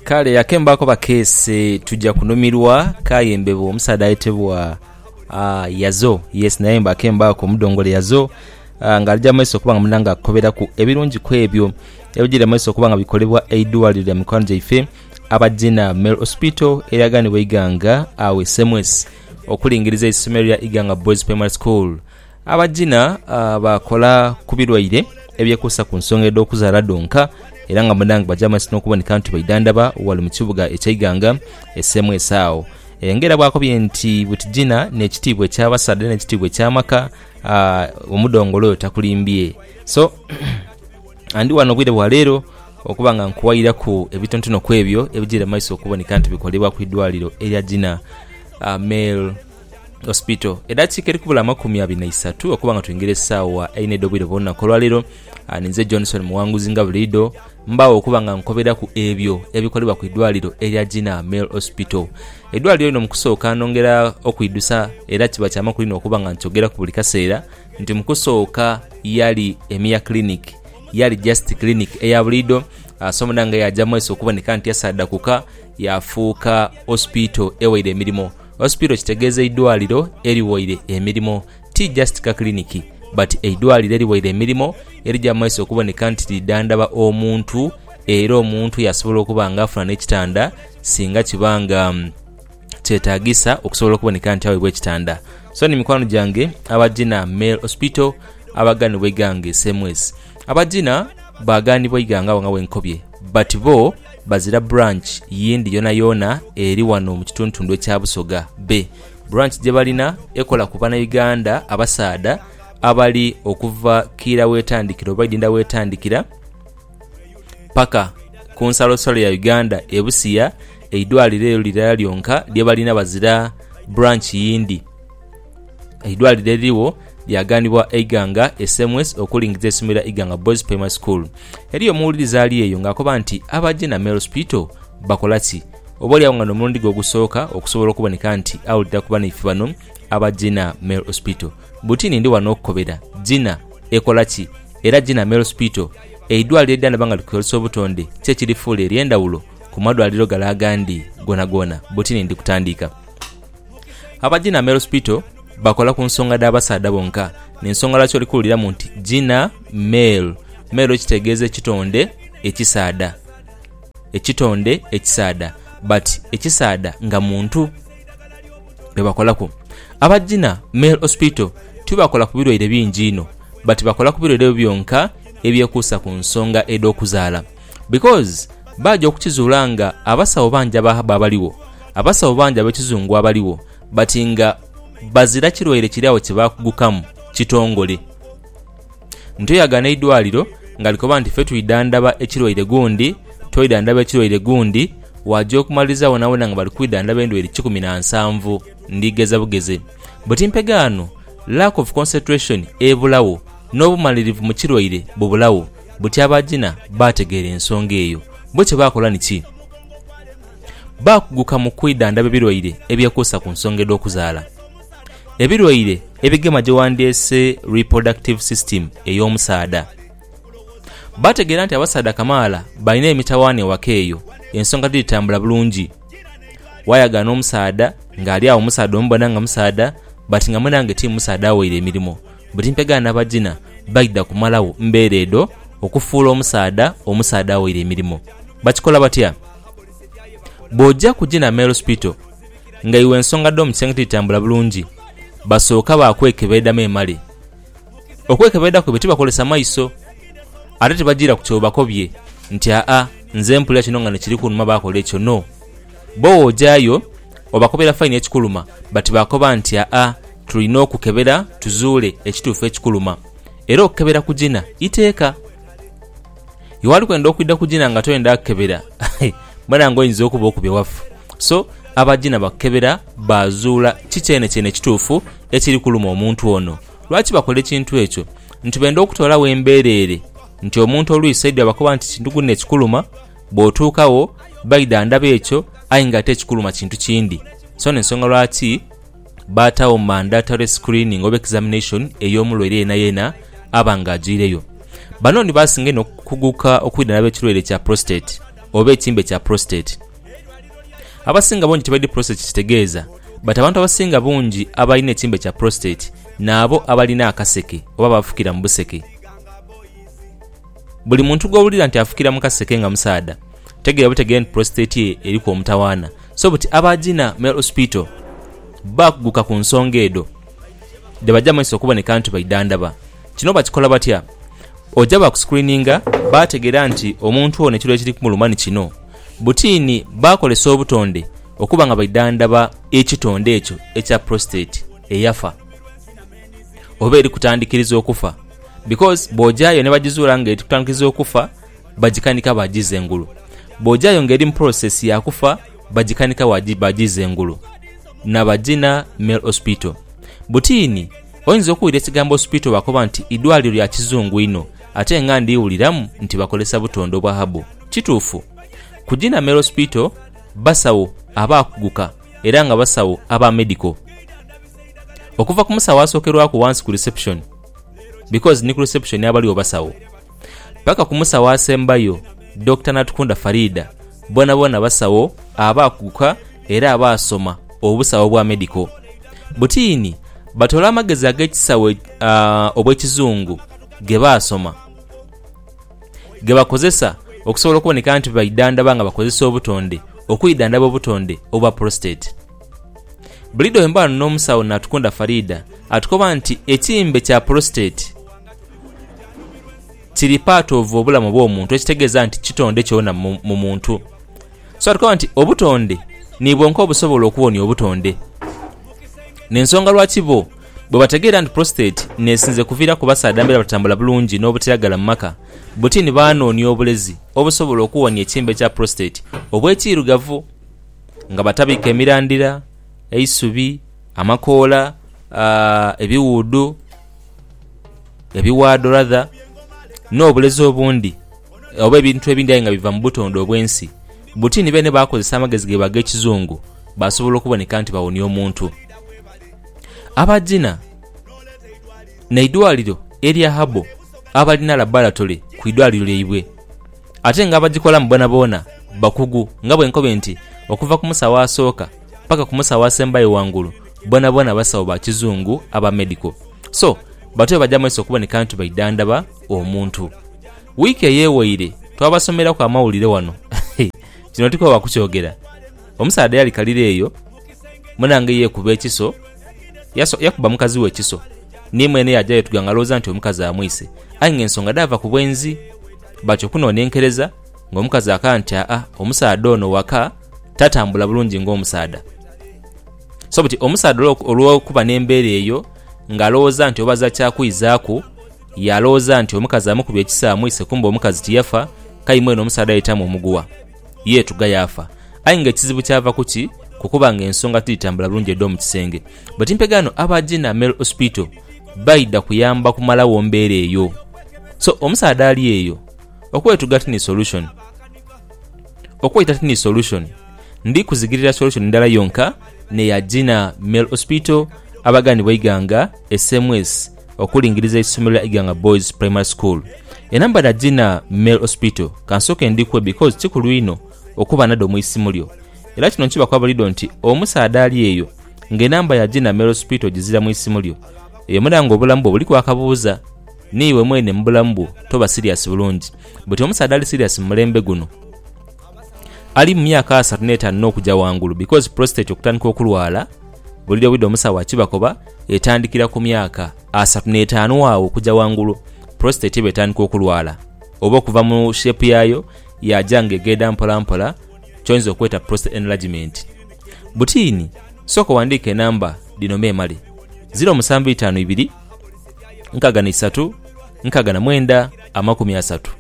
kale ake mbaako bakeese tujja kunhumirwa kaye mbebo omusaadha ayetebwa ah, yazo yes naye mba ake mbaako omudongole yazo ah, nga alija mu maiso okuba nga muna nga akukoberaku ebirungi ku ebyo ebijira mu maiso okuba nga bikolebwa eidwaliro lya mikwano gyaife aba Gina Male Hospital eryaganibwa eighanga awe Semwesi okulingiriza eisomero lya Iganga Boys Primary School. Abagina baakola ku birwaire ebyekuusa ku nsonga edh'okuzaala dhonka era nga munda nga baja mu maiso n'okuboneka nti baidhandhaba ghale mu kibuga eky'eighanga esemwese agho. Enga era bwakobye nti buti gina n'ekitiibwa eky'abasaadha era n'ekitiibwa eky'amaka omudhongolo oyo takulimbye. So ndi ghano obwire bwa leero okuba nga nkuwairaku ebitontono ku ebyo ebijaire mu maiso okuboneka nti bikolebwa ku idwaliro erya Gina Male. Hospital. Edakiika eri kubula amakumi abiri na isatu okuba nga twingira esaawa eina edh'obwire bw'olunaku olwaleero, ah, ninze Johnson Muwanguzi nga buliidho mbaagho okuba nga nkoberaku ebyo ebikolebwa ku idwaliro erya Gina Male Hospital. Eidwaliro lino mu kusooka nongera okwidhusa era kiba kya makulu inho okuba nga nkyogeraku buli kaseera nti mu kusooka yali a mere clinic, yali just clinic eya buliidho, ah, so muna nga yaaja mu maiso okuboneka nti yasaadhakuka yaafuuka Hospital ewaire emirimo. Hospital kitegeeza eidwaliro eriwaire emirimo ti just ka clinic but eidwaliro eriwaire emirimo erija mu maiso okuboneka nti lidhandhaba omuntu era omuntu yasobola okuba nga afuna n'ekitanda singa kiba nga kyetagisa okusobola okuboneka nti awebwa ekitanda so ni mikwano gyange abagina male hospital abaganibwa eigange same ways Abagina baaganibwa eighanga agho nga wenkobye but bo bazira branch yindi yoonayoona eri wano mu kituntundu ekya Busoga Bay. Branch gye balina ekola ku Banauganda abasaadha abali okuva kiira w'etandikiro oba idinda w'etandikira paka ku nsalosalo ya Uganda e Busia. Eidwaliro elyo lirala lyonka lye balina bazira branch yindi. Eidwaliro eririgho lyaganibwa Eiganga SMS okulingiza eisomero lya Iganga Boys Primary School. Eriyo omuwuliriza ali eyo ng'akoba nti aba Genamel Hospital bakola ki? Oboolyawo nga n'omulundi gwe ogusooka okusobola okuboneka nti awulira ku banaife bano aba Genamel Hospital. Buti ni ndi wano okukobera. Gina ekola ki? Era Genamel Hospital, eidwaliro eridhandhaba nga likozesa obutonde, ki ekirifuula ery'endhawulo ku madwaliro gale agandi goonagoona? Buti ni ndi kutandika. Aba Gina Male Hospital bakola ku nsonga dha basaadha bonka, n'ensonga lwaki oli kuwuliramu nti Gina Male. Male kitegeeza ekitonde ekisaadha, ekitonde ekisaadha but ekisaadha nga muntu. Be bakolaku. Aba Gina Male Hospital tibakola ku birwaire bingi inho but bakola ku birwaire ebyo byonka ebyekuusa ku nsonga edh'okuzaala. Because baaja okukizuula nga abasawo bangi abaabaligho, abasawo bangi ab'ekizungu abaligho but nga bazira kirwaire kiri agho kye baakugukamu kitongole. Nti oyagana eidwaliro nga likoba nti ffe twidhandhaba ekirwaire gundi, twidhandhaba ekirwaire gundi, waaja okumaliriza boonaboona nga bali kwidhandhaba endwaire kikumi na nsanvu. Ndi gheza bugeze. But mpegaano lack of concentration ebulagho, n'obumalirivu mu kirwaire bubulagho. buti abaajina baategeera ensonga eyo. Bo kye baakola ni ki? Baakuguka mu kwidhandhaba ebilwaire ebyekuusa ku nsonga edh'okuzaala. Ebilwaire ebigema gye wandyeese reproductive system ey'omusaadha. Baategeera nti abasaadha kamaala balina emitawaana ewaka eyo, ensonga tidhitambula bulungi. Waayagaana omusaadha ng'ali agho musaadha omubona nga musaadha but nga mwenange ti musaadha aweire emirimo. Buti mpegha na bagina baidha kumalagho mbeera edho okufuula omusaadha omusaadha awaire emirimo. Bakikola batya? Bw'oja ku Gina Male Hospital nga iwe ensonga dh'omu kisenge tidhitambula bulungi, basooka baakwekebeedhamu emale. Okwekebeedha kwaibwe tibakozesa maiso, ate tibajiira ku ky'obakobye nti aa nze mpulira kino nga nikiri kunuma baakola ekyo, no. Bo bw'ojayo obakubira faini ekikuluma bati baakoba nti aa tulina okukebera tuzuule ekituufu ekikuluma. Era okukebera kugina iteeka. Iwe ali kwenda okwidha kugina nga toyenda kukebera mbona nga oyinza okuba okubye wafu. So abagina bakukebera baazuula ki kyenekyene ekituufu ekiri kuluma omuntu ono. Lwaki bakola ekintu ekyo? Nti benda okutoolawo embereere nti omuntu olwisa idhi abakoba nti ekintu guno ekikuluma. Bw'otuuka wo, baidha ndaba ekyo, aye nga ate ekikuluma kintu kindi. So n'ensonga lwaki baataagho mandatory screening oba examination ey'omulwaire yenayena aba nga ajwaireyo. Bano ni baasinga inho okukuguka okwidha ndaba ekirwaire kya prostate oba ekimbe kya prostate. Abasinga bungi tibaidhi prostate kye kitegeeza, but abantu abasinga bungi abalina ekimbe kya prostate n'abo abalina akaseke oba abafukira mu buseke. Buli muntu gw'owulira nti afukira mu kaseke nga musaadha, tegeera butegeere nti prostate ye eriku omutawaana so buti aba Gina Male Hospital baakuguka ku nsonga edho dhe baja mu maiso okuboneka nti baidhandhaba. Kino bakikola batya? Oja baakusikuriininga baategeera nti omuntu ono ekiro ekiri kumuluma ni kino. Butiini baakozesa obutonde okuba nga baidhandhaba ekitonde ekyo ekya prostate eyafa oba eri kutandikiriza okufa. Because bw'ojayo ni bajizuula nga etutandikiza okufa, bajikanika baajiza engulu. Bw'ojayo nga eri mu process ya kufa, bajikanika baajiza engulu. Na Bagina Male Hospital. Butiini, oyinza okuwulira ekigambo hospital bakoba nti idwaliro lya kizungu inho ate nga ndiwuliramu nti bakozesa butonde obwa herbal. Kituufu? Ku Gina Male Hospital, basawo abaakuguka era nga basawo aba medical. Okuva ku musawo asookerwaku wansi ku reception, because ni ku reception abaliwo basawo paka ku musawo asembayo Dokita Natukunda Faridah bonaboona basawo abaakuguka era abaasoma obusawo bwa medical butiini batoola amagezi ag'ekisawo uh, obw'ekizungu ge baasoma ge bakozesa okusobola okuboneka nti baidhandaba nga bakozesa obutonde okwidhandaba obutonde obwa prostate Buliidho bwe mba ghano n'omusawo Natukunda Faridah atukoba nti ekimbe kya prostate kiri part of obulamu obw'omuntu ekitegeeza nti kitonde kyona mu muntu so atukoba nti obutonde ni bwonka obusobola okuwonia obutonde n'ensonga lwaki bo bwe bategeera nti prostate n'esinze kuviiraku basaadha mbeera batatambula bulungi n'obutiragala mu maka buti ni baanoonia obulezi obusobola okuwonia ekimbe kya prostate obw'ekiirugavu. nga batabike emirandira, eisubi, amakoola, ebiwuudhu, ebiwaadho rather, n'obulezi obundi oba ebintu ebindi aye nga biva mu butonde obw'ensi buti ni beene baakozesa amagezi gaibwe ag'ekizungu baasobola okuboneka nti bawonia omuntu. Abagina n'eidwaliro erya Herbal abalina labaratole ku idwaliro lyaibwe. ate nga abagikolamu boonaboona bakugu nga bwe nkobe nti okuva ku musawo asooka paka ku musawo asembayo ghangulu boonaboona basawo ba kizungu aba medical so batu be baja maiso okuboneka nti baidhandhaba omuntu. Wiiki eyewaire twabasomeraku amawulire wano kino tikoowa kukyogera omusaadha eyalikalira eyo Munange yeekuba ekiso, yakuba mukazi we ekiso, ni mwene yaaja yeetuga ng'alowooza nti omukazi amwise aye ng'ensonga dhaava ku bwenzi. Batyo kunonenkereza ng'omukazi akana nti aa omusaadha ono waka tatambula bulungi ng'omusaadha. So buti omusaadha olw'okuba n'embeera eyo ng'alowooza nti obaza kya kwizaaku yaalowooza nti omukazi amukubye ekiso amwise kumbe omukazi tiyafa k'aye mwene omusaadha yaitamu omuguwa. yeetuga yaafa. Aye nga ekizibu kyava ku ki? Ku kuba nga ensonga tidhitambula bulungi edh'omu kisenge. Bweti mpegaano aba Gina Male Hospital baidha kuyamba kumalagho mbeera eyo. So omusaadha ali eyo, okwetuga ti ni solution. Okwaita ti ni solution. Ndi kuzigirira solution ndala yonka n'eya Gina Male Hospital abaganibwa eighanga, SMS. okulingiriza eisomero lya Iganga Boys Primary School. Enamba dha Gina Male Hospital kansoke ndhikwe because kikulu inho okuba nadho mu isimu lyo. Era kino nkibaku abulidho nti omusaadha ali eyo nga enamba ya Gina Male Hospital ogizira mu isimu lyo, eyo mudha nga obulamu bwo buliku akabuuza. Niiwe mwene mu bulamu bwo toba serious bulungi but omusaadha ali serious mu mulembe guno ali mu myaka asatu n'etaanu n'okuja ghangulu because prostate okutandika okulwala bulidho bulidho omusawo akibakoba etandikira ku myaka asatu n'etaanu agho okuja ghangulu, prostate eba etandika okulwala oba okuva mu shape yayo yaja nga egenda mpolampola kyoyinza okweta prostate enlargement. Butiini, sooka owandiike enamba dhino memale, ziro musanvu itaanu ibiri, nkaaga na isatu, nkaaga na mwenda, amakumi asatu,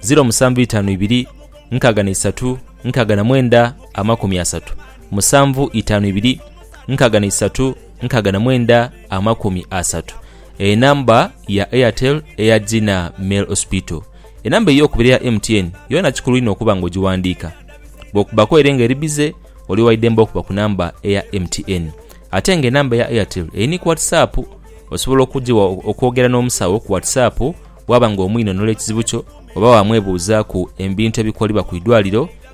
ziro musanvu itaanu ibiri, nkaaga na isatu, nkaaga na mwenda, amakumi asatu, musanvu itaanu ibiri, nkaaga na isatu, nkaaga na mwenda amakumi asatu enamba ya Airtel eya Gina Mel Hospital. Enamba ey'okubiri eya MTN yoona kikulu inho okuba nga ogiwandiika. Bw'okubbaku ere nga eri bize, oli wa idembe okuba ku namba eya MTN. Ate nga enamba eya Airtel eri ni ku WhatsApp, osobola okugigha okwogera n'omusawo ku WhatsApp bwaba nga omwinhonhola ekizibu kyo oba waamwebuuzaaku ebintu ebikolebwa ku idwaliro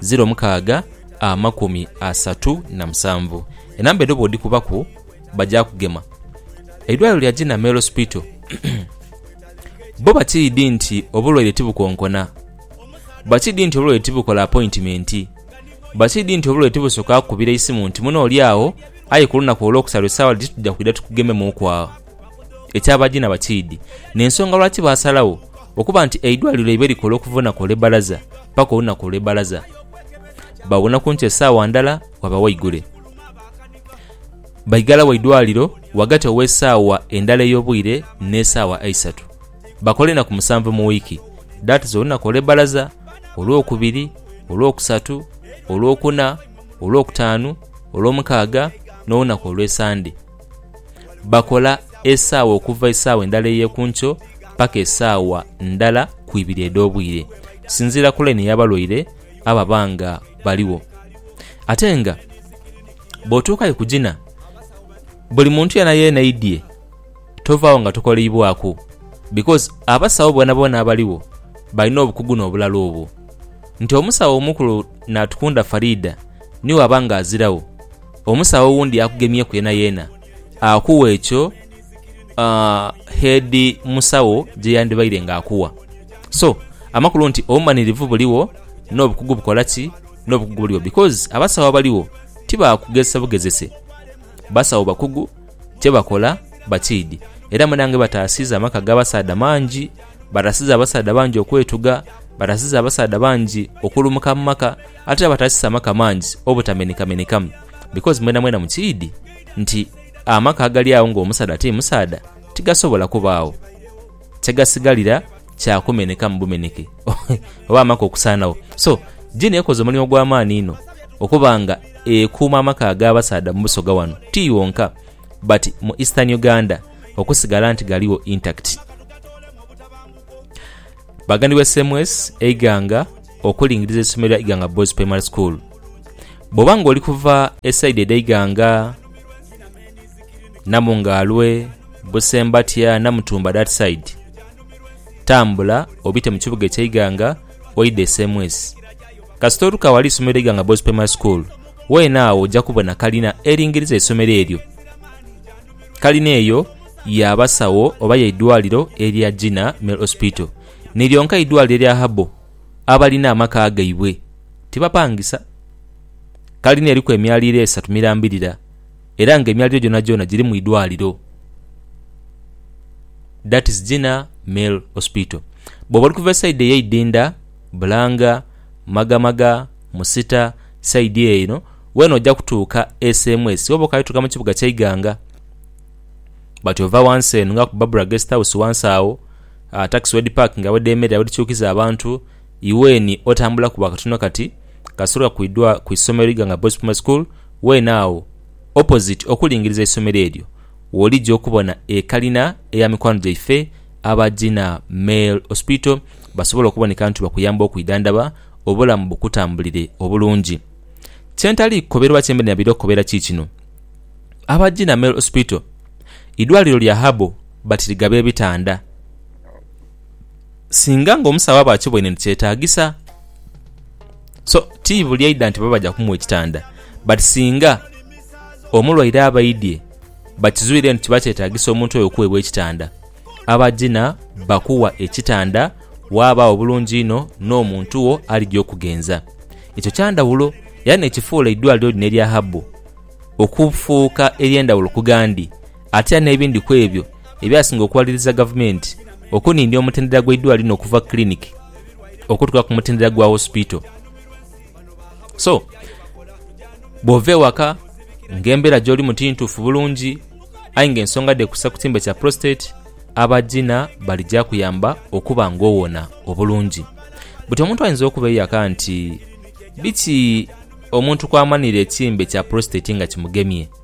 ziro mukaaga amakumi asatu na musanvu. Enamba edho bwodhikubaku baja kugema. Eidwaliro lya Gina Male Hospital bo bakiidhi nti obulwaire tibukonkona, bakiidhi nti obulwaire tibukola apointimenti, bakiidhi nti obulwaire tibusoka kukubira isimu nti mune oli agho aye ku lunaku olwokusatu esaawa dhiti tuja kwidha tukugememuuku agho. eky'abagiina bakiidhi n'ensonga lwaki baasalagho okuba nti eidwaliro lyaibwe likola okuva olunaku olw'ebbalaza paka olunaku olw'ebbalaza. Bawona kunkyo esaawa ndala waba waigule. Baigala wa idwaliro wagati ow'esaawa endala ey'obwire n'esaawa eisatu. Bakola enaku musanvu mu wiiki that is olunaku olw'ebbalaza, olw'okubiri, olw'okusatu, olw'okuna, olw'okutaanu, olw'omukaaga n'olunaku olw'esande. Bakola esaawa okuva esaawa endala ey'ekunkyo paka esaawa ndala ku ibiri edh'obwire, okusinziira ku laini y'abalwaire ababa nga baligho. Ate nga bw'otuukayo ku gina, buli muntu yeenayeena aidhie, tovaagho nga tokoleibwaku because abasawo boonaboona abaligho balina obukugu n'obulala obwo. Nti omusawo omukulu Natukunda Faridah niwe aba nga aziragho Omusawo owundi akugemyeku yeenayeena akuwa ekyo heedi musawo gye yandibaire ng'akuwa. So, amakulu nti obumanirivu buligho n'obukugu bukola ki? N'obukugu buligho because abasawo abaligho ti ba kugezesa bugezese. Basawo bakugu, kye bakola bakiidhi. Era munange bataasiiza amaka g'abasaadha mangi, bataasiiza abasaadha bangi okwetuga, bataasiiza abasaadha bangi okulumuka mu maka. Ate abatasisa maka mangi obutamenhekamenhekamu, because mwenamwena mukiidhi nti amaka agali agho ng'omusaadha ti musaadha tigasobola kubaagho. Kye gasigalira kya kumenhekamu bumenheke oba amaka okusaanagho. So, Gini ekoze omulimu gwa maani inho okuba nga ekuuma amaka ag'abasaadha mu Busoga wano ti wonka but mu Eastern Uganda okusigala nti galigho intact. Bagandiwe Ssemues, Eiganga. okulingiriza eisomero lya Iganga Boys Primary School. Bwoba nga oli kuva esaidi edha Iganga, Namungaalwe, Busembatya, Namutumba that side, tambula obite mu kibuga ekye Iganga oidhe e Semwesi. Kasita otuka aghali eisomero lya Iganga Boys Primary School, weene agho oja kubona kalina eringiriza eisomero eryo. Kalina eyo ya basawo oba ya idwaliro erya Gina Male Hospital. ni lyonka eidwaaliro erya Habo abalina amaka gaibwe tibapangisa. Kalina eriku emyaliiro esatu mirambirira era nga emyaliiro gyonagyona girimu idwaaliro. That is Gina Male Hospital. Bwoba oli kuva esayidi eye Idinda, Bulanga, Magamaga, Musita, sayidi eyo eno, weena oja kutuuka sms woba okaali tuuka mu kibuga kya Iganga. But ova wansi eno nga ku Barbara Guest House wansi awo, Takisi wedhipakinga, wedhemerera, wedhikyukiza abantu, iweni otambulaku bwa katono kati, kasita otuka ku idwa ku isomero Iganga Boys Primary School, weene agho opposite okulingiriza eisomero eryo w'oligya okubona ekalina eya mikwano gyaife aba Gina Male Hospital basobole okuboneka nti bakuyamba okwidhandhaba obulamu bukutambulire obulungi. Kye ntali kukobera oba kye mbadde nabaire okukobera ki kino, aba Gina Male Hospital idwaaliro lya herbal. batiriga b'ebitanda. Singa ng'omusawo aba akiboine nti kyetaagisa, so ti buli aidha nti bo baja kumuwa ekitanda. But singa omulwaire aba aidhie bakizwire nti kiba kyetaagisa omuntu oyo okuweebwa ekitanda, abagina bakuwa ekitanda waabagho bulungi inho n'omuntu wo alija okugenza. Ekyo kya ndhawulo era n'ekifuula eidwaliro lino erya Habbo okufuuka ery'endhawulo ku gandi. Atya n'ebindi ku ebyo ebyasinga okuwaliriza gavumenti okunindya omutendera gw'eidwaliro lino okuva ku kiliniki okutuuka ku mutendera gwa wosipito. So, bw'ova ewaka ng'embeera gy'olimu ti ntuufu bulungi aye ng'ensonga dheekusa ku kiimba kya prostate, aba Gina bali gyakuyamba okuba ng'owona obulungi. Buti omuntu ayinza okuba eyaka nti biki omuntu kw'amanira ekiimbe kya prostate nga kimugemye?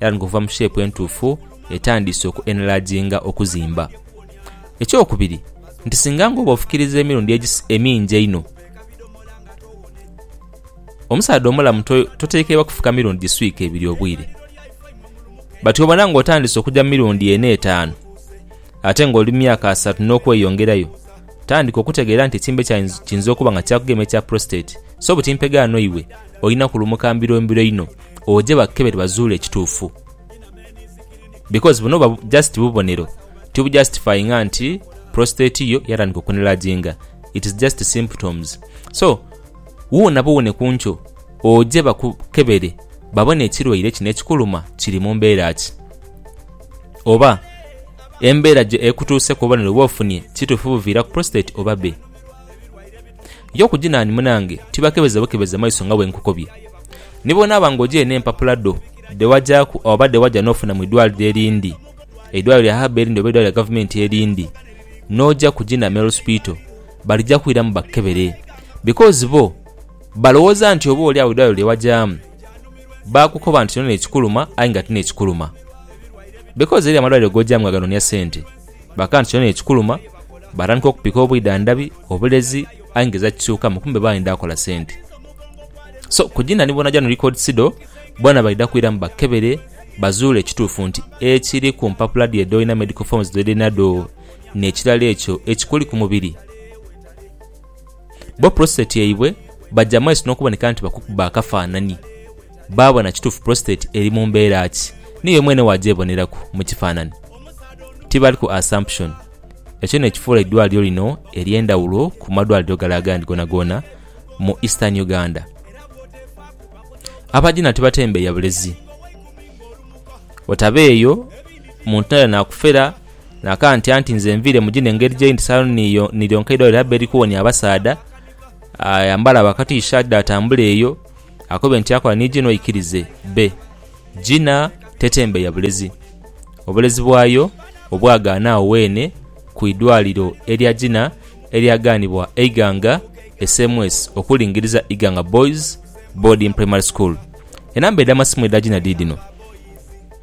era niguva mu sheepu entuufu etandiise oku enelaajinga okuzimba. Ekyokubiri nti singa nga oba ofukiriza emirundi emingi einho, omusaadha omulamu totekeibwa kufuka mirundi giswika ebiri obwire. Bati wobona nga otandiise okuja mu mirundi ena etaanu ate nga oli mu myaka asatu n'okweyongerayo, tandika okutegeera nti ekimbe kiinza okuba nga kyakugemye ekya prostate, so buti mpegaano iwe. olina kulumuka mbiro mbiro inho oje bakukebere bazuule ekituufu because buno buba just bubonero tibujustifyinga nti prostate yo yatandika okunelaginga it is just symptoms so wuunabe owone kunkyo oje bakukebere babone ekirwaire kino ekikuluma kiri mumbeera ki oba embeera ekutuuseku obubonero bwofunye kituufu buviira ku prostate oba be. Yo ku Jinani munange tibakebeza bukebeza maiso nga bwe nkukobye. Ni bw'onaaba ng'ojaire n'empapula dho dhe wajaaku oba dhe waja n'ofuna mu idwaliro erindi, eidwaliro lya haba erindi oba eidwaliro lya Gavumenti erindi, n'oja ku Jina Male Hospital, balija kwiramu bakukebere. Because bo balowooza nti oba oli agho eidwaliro lye wajaamu baakukoba nti kino n'ekikuluma aye nga ti n'ekikuluma. Because eriyo amalwaliro g'ojaamu nga ganonia sente. Bakaaba nti kyona ni ekikuluma, baatandika okupika obwidhandhabi, obulezi aye nga eza kisuukamu kumbe baayenda kola sente. So kugina ni Bona Jano Record Sido bona baidha kwiramu bakebere bazuule ekituufu nti ekiri ku mpapula dhi edhoolina medical forms dh'edhinadho n'ekirala ekyo ekikuli ku mubiri. Bo prostate yaibwe baja mu maiso n'okuboneka nti bakukuba akafaanani baabona kituufu prostate eri mu mbeera ki. Niiwe mwene waagyeboneraku mu kifaanani. Tibali ku assumption. Ekyo n'ekifuula eidwaliro lino ery'endhawulo ku madwaliro gale agandi goonagoona mu Eastern Uganda. Abagina tibatembeeya bulezi. Otabeeyo muntu naira naakufera. Naakantya nti, Nze nviire mu gino engeri gye ndi saanu niyo ni lyonka eidwaliro lya Beri kuwonia abasaadha. Ayambale abo akatiishaati dhe atambule eyo, akobe nti akola ni gino aikirize be. Gina tetembe ya bulezi. Obulezi bwayo obwagaana agho weene ku idwaliro erya Gina eryagaanibwa eighanga SMS okulingiriza Iganga Boys Boarding Primary School. Enamba edh'amasimu edha Gina dhi dhino.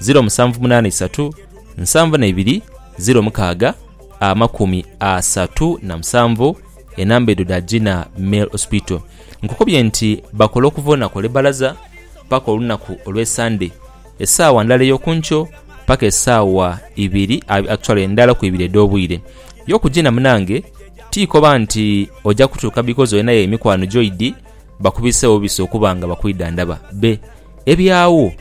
0783 72 06 amakumi asatu na musanvu enamba edho dha Gina Male Hospital. Nkukubye nti bakola okuva olunaku olw'ebbalaza paka olunaku olw'esande esaawa ndala ey'oku nkyo paka esaawa ibiri actually ndala ku ibiri edh'obwire. Yo ku Gina munange ti koba nti oja kutuuka because olinayo emikwano gyoidi bakubisewo bubisi okuba nga bakwidhandhaba be. Eby'agho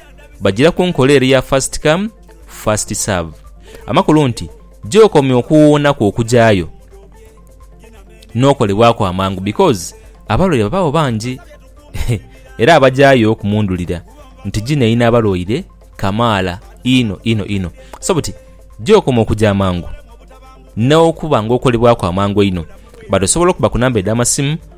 bagira ku nkola ere ya first come, first serve. Amakulu nti gy'okomya okuwuunaku okugyayo, n'okolebwaku amangu because abalwaire babaagho bangi era abagyayo kumundhulira nti gino eri n'abalwaire kamaala inho inho inho. So buti gy'okoma okugya amangu n'okuba ng'okolebwaku amangu einho. But osobola okuba ku namba edh'amasimu.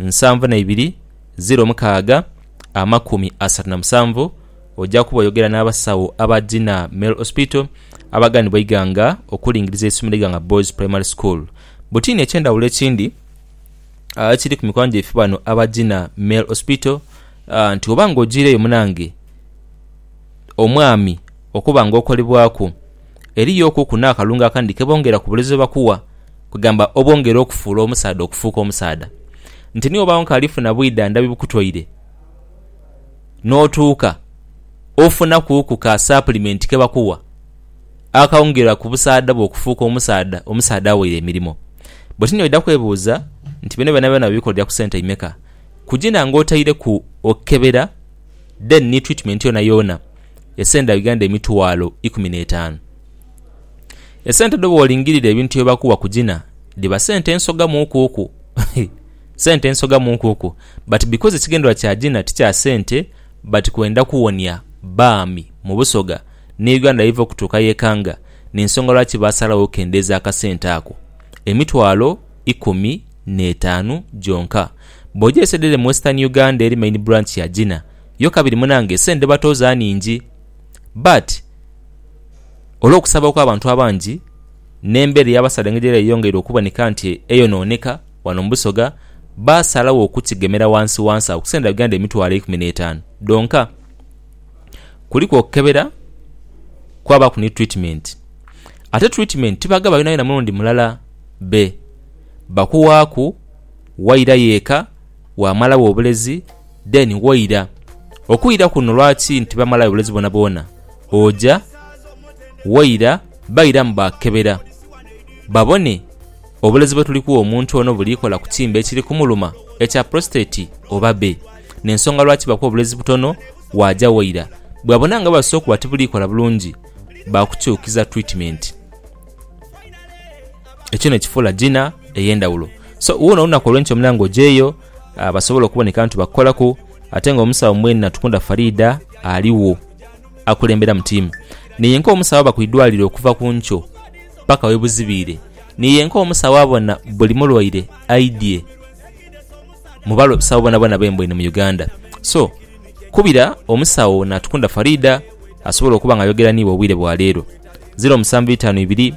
nsanvu na ibiri ziro mukaaga amakumi asatu na musanvu oja kuba oyogera n'abasawo aba Dina Male Hospital abaganibwa eighanga okulingiriza eisomero Iganga Boys Primary School. Butini eky'endhawulo ekindi ekiri ku mikwano gyaife bano aba Dina Male Hospital nti oba nga ojiireyo munange omwami okuba nga okolebwaku, eriyo okuku n'akalungo akandi ke bongera ku bulezo bakuwa, kwegamba obwongera okufuula omusaadha okufuuka omusaadha. Nti ni wobaawo nkaali funa bwidha ndhabi bukutoire, n'otuuka ofuna kuuku ka sapulimenti ke bakuwa akaongera ku busaadha bwo okufuuka omusaadha omusaadha aweire emirimo. Bwe ti n'oidha kwebuuza nti bino byonabyona babikolera ku sente imeka? Kugina nga otaireku okukebera then ni twitimeenti yoonayoona. esenda Uganda emitwalo ikumi n'etaanu. Esente dho bwolingirira ebintu bye bakuwa ku gina dhiba sente nsoga muukuuku sente nsoga muukuuku but because ekigendererwa kya gina ti kya sente but kwenda kuwonia baami mu Busoga ni Uganda yeiva okutuuka yekanga ni nsonga lwaki baasalawo okukendeeza akasente ako emitwalo ikumi n'etaanu gyonka. Bw'oja e Sedere mu Western Uganda eri main branch ya gina, yo kabiri munange esente dhebatooza nhingi but olwokusaba okwabantu abangi n'embera eyabasala engeri yeyeyongeire okuboneka nti eyonooneka wano mu Busoga baasalagho okukigemera wansi wansi agho ku sente dha Uganda emitwalo eikumi n'etaanu dhonka. Kuliku okukebera kwabaaku ni treatment ate treatment tibagaba yonayona mulundi mulala be bakuwaaku wairayo eka. waamalawo obulezi then waira. Okwira kuno lwaki nti bamalayo obulezi bwonabwona? Oja, waira, bairamu baakukebera babone obulezi bwetulikuwa omuntu ono bulikola ku kiimba ekiri kumuluma ekya prostate oba be. N'ensonga lwaki bakuwa obulezi butono waaja waira. Bwebabona nga bwebasose okuba tibulikola bulungi baakukyukiza treatment. ekyo nekifuula Gina eyendawulo so wona olunaku olwenkyo omulango ojeyo uh, basobole okuboneka nti bakukolaku ate nga omusawo mwene natukunda Farida aliwo akulembera mu tiimu niyenka omusawo aba kwidwaliro okuva ku nkyo paka webuzibiire niyenka omusawo abona buli mulwaire aidye mubalo sawo bona bona bembo eno mu Uganda so kubira omusawo natukunda Farida asobole okuba nga ayogera niiwe obwire bwa leero 0752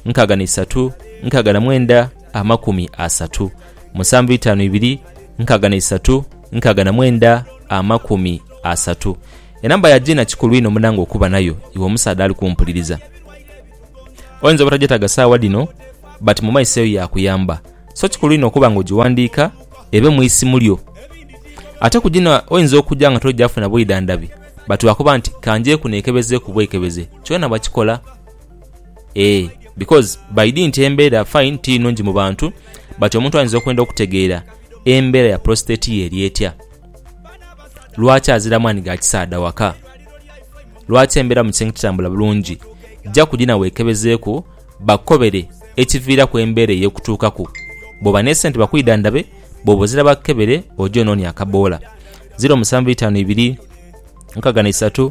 nkaaga n'eisatu, nkaaga na mwenda, amakumi asatu. Musanvu itaanu ibiri, nkaaga n'eisatu, nkaaga na mwenda, amakumi asatu. Enamba ya Gina kikulu inho munange okuba nayo iwe omusaadha ali kumpuliriza. Oyinza obutagyetaaga saawa dhino but mu maiso eyo yaakuyamba. So kikulu inho okuba nga ogiwandiika ebe mu isimu lyo. Ate ku gino oyinza okuja nga togyafuna bwidhandhabi but wakoba nti ka ngyeku neekebezeeku bwekebeze kyona bakikola. eeh because by di nti embera fine tiri nungi mu bantu but omuntu ayinza okwenda okutegeera embera ya prostate ye eri etya, lwaki azira amaani ga kisaadha waka, lwaki embera mu kisenge tetambula bulungi, ja ku dina wekebezeeku bakukobere ekiviiraku embera eyo okutuukaku, bwoba ne sente bakwidhandhabe, bwoba ozira bakukebere oje onoonye akaboola. 0752 63.